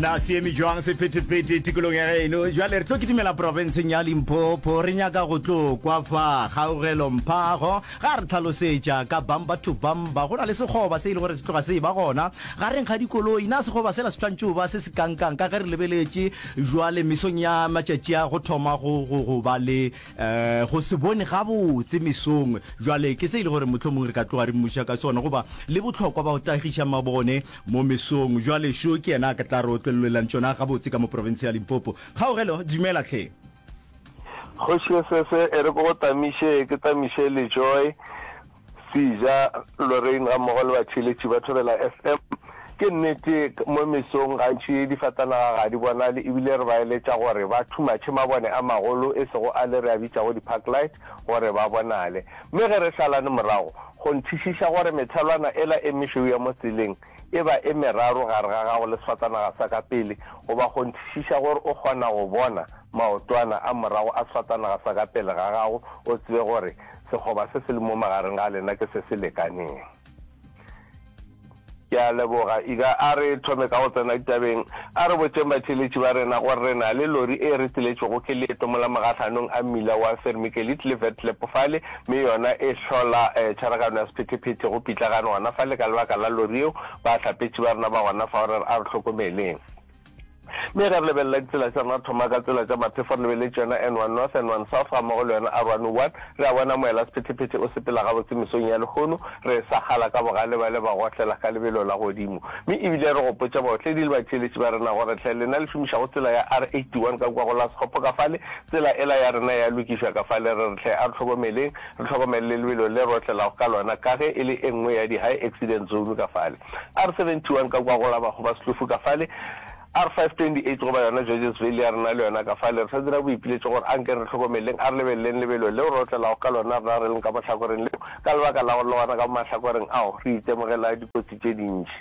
na se eme jwang sephetephete tikolong ya geno jale re tlo kitimela porofenseng ya limpopo re nyaka go tlo kwa fa kgaogelo mphago ga re tlhalosetša ka bamba to bamba go na le sekgoba se e le gore se tloga se e ba gona ga reng ga dikoloi na sekgoba sela se tshwanetse ba se se kankang ka ge re lebeletše jwale mesong ya matšatši a go thoma go ba le um go se bone gabotse mesong jwale ke se e le gore motlho mongwe re ka tloga re mmuša ka sona goba le botlhokwa ba go tagiša mabone mo mesong jwale šo ke yena a ka tla re otlelelelang tsona gabotse ka mo province ya limpopo kgaogelo dumela tlhe kgoši sese e re ko go tamiše ke tamiše le joy Sija, Lorraine gammogo le batšheletši ba thobela FM. Ke nnete, mo mesong gantši difatanaga ga di bonale ebile re ba eletša gore ba thumatšhe mabone a magolo e sego ale re a bitšago di-park light gore ba bonale. Mme ge re šalane morago, go nthišiša gore methelwana ela e mešweu ya mo tseleng e ba e meraro gare ga gago le sefatanaga sa ka pele goba go nthišiša gore o kgona go bona maotwana a morago a sefatanaga sa ka pele ga gago o tsebe gore Sekgoba se se lemo magareng ga lena ke se se lekaneng. Ke a leboga. Ika a re thome ka go tsena ditabeng. A re botšeng batheeletši ba rena gore re na le lori e re tseletšego ke leeto mola mogahlanong a mmila wa Vermikelid le Vetlep fale, mme yona e hlola tšharagano ya sephetephete go pitlagane gona fale ka lebaka la lori yeo. Bahlapetši ba rena ba gona fao, re re a re hlokomeleng. Mme ge re lebelela ditsela tša rena, thoma ka tsela tša Mathefo re lebelele tšona N1 North, N1 South ga mmogo le yona R101, re a bona moela sephetephete o sepela gabotse mesong ya lehono, re sagala ka bogale ba le ba gohlela ka lebelo la godimo. Mme e bile re gopotša baotledi le batheeletši ba rena gore hle lena le šomišago tsela ya R81 ka kua go la Sekgopo ka fale, tsela ela ya rena ya lokišwa ka fale, re re hle a re hlokomeleng, re hlokomele le lebelo le re otlelago ka lona ka ge e le e nngwe ya di-high accident zone ka fale. R71 ka kwa go la bago ba Setlofu ka fale, R528 goba yona Georgesville ya rena le yona ka fale. Re sa dira boipiletšo gore a nke re hlokomeleng, a re lebeleleng lebelo leo re otlelago ka lona rena re leng ka mahlakoreng leo, ka lebaka la gore le gona ka mo mahlakoreng ao re itemogela dikotsi tše dintši.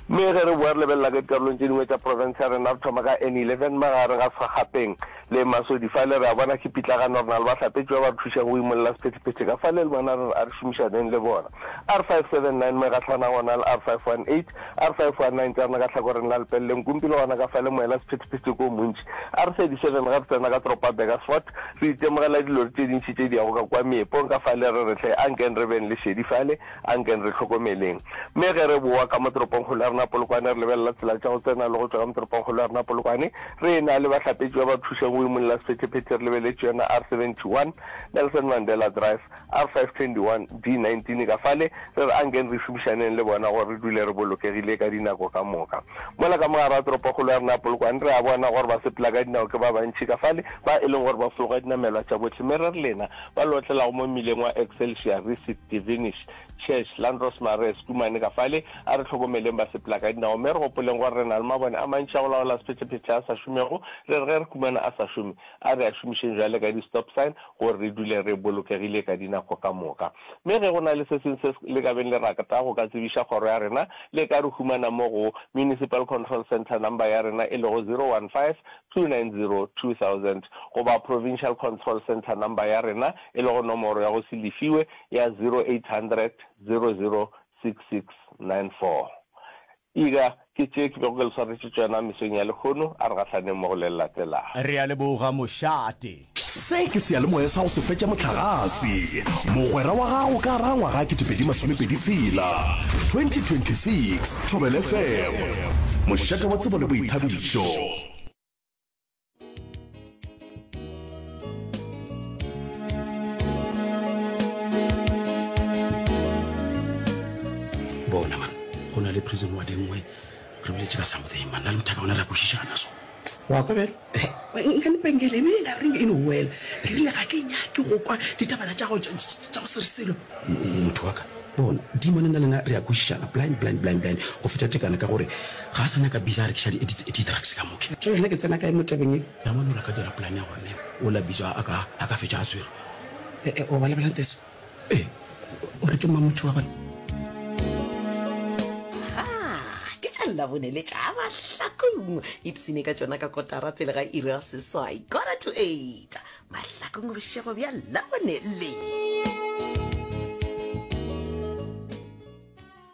Mme ge re boa re lebelela ka dikarolong tše dingwe tša profense ya rena, re thoma ka N11 magare ga Sgagapeng, le Masodi fale, re a bona ke pitlagano, re na le bahlapetši ba ba re thušago go imolla sephethephethe ka fale, le bona re re a re šomišaneng le bona. R579 mo e gahlanago gona le R518, R519 tša rena ka hlakoreng la lepeleleng kumpi le gona ka fale moela sephethephethe ke o montši. R37 ge re tsena ka toropo ya Burgersfort, re itemogela dilori tše dintši tše di yago ka kua meepong ka fale, re re hle, ankeng re beng le šedi fale, A nkeng re hlokomeleng. Mme ge re bowa ka mo toropongkgolo ya rena Polokwane, re lebelela tsela tša go tsena le go tšwa ka mo toropongkgolo ya rena Polokwane, re ena le bahlapetši ba ba thušeng go imolla sephethephethe re lebeletše yona R71, Nelson Mandela Drive, R521, D19 ka fale, re re a nkeng re šomišaneng le bona gore re dule re bolokegile ka dinako ka moka. Mola ka mogare ga toropongkgolo ya rena Polokwane, re a bona gore basepelakadinao ke ba bantši ka fale, ba e leng gore ba fologa dinamelwa tša bohle, mme re re lena, ba lotlelago mo mmileng wa Excelsior, Risit, Divinish, Church, Landros Marais, Kumane ka fale, a re tlhokomeleng ba sepela ka dinao mme re gopoleng gore re na le mabone a mantši a go laola sephetšephetše a sa šomego, re re ge re kumana a sa šome, a re a šomišeng bjale ka di-stop sign gore re dule re bolokegile ka dinako ka moka. Mme ge go na le se sengwe se le ka beng le rata go ka tsebiša kgoro ya rena, le ka re humana mo go Municipal Control Centre number ya rena e lego 015 2000 goba Provincial Control Centre number ya rena e lego nomoro ya go se lefiwe ya 0800 00 6694. Ega ke tše ke bego ke le swaretše tšona mesong ya lekhono, a re gahlaneng mo go le le latelago. Re a leboga mošate. Se ke seyalemoya sa go se fetša mohlagase. Mogwera wa gago ka ra ngwaga 2026. 2026, Thobela FM. Mošate wa tsebo le boithabišo. le prison wa dingwe Re boletše ka something man, nna le mothaka ona re a kwešišana so. Wa kwa bjale? Eh, nka lepengele e bile la ring in a well. Re rile ga ke nyake go kwa ditabana tša go tša go sere selo. Motho wa ka, bona, Dimone nna le yena re a kwešišana blind, blind, blind, blind go feta tekana ka gore ga a sa nyaka Bisa a rekiša di, di, di-drugs ka mo. Ke tšoge nna ke tsena kae mo tabeng ye? Damane o la ka dira plan ya gore ne o la Bisa a ka, a ka fetša a swerwe. Eh, eh, o ba lebelang Teso? Ee, o re ke mang motho wa gona? Ga ke tša Labone le tša Mahlakong. Ipsene ka tšona ka kotara pele ga iri ya seswai, quarter to eight. Mahlakong bošego bja Labone le.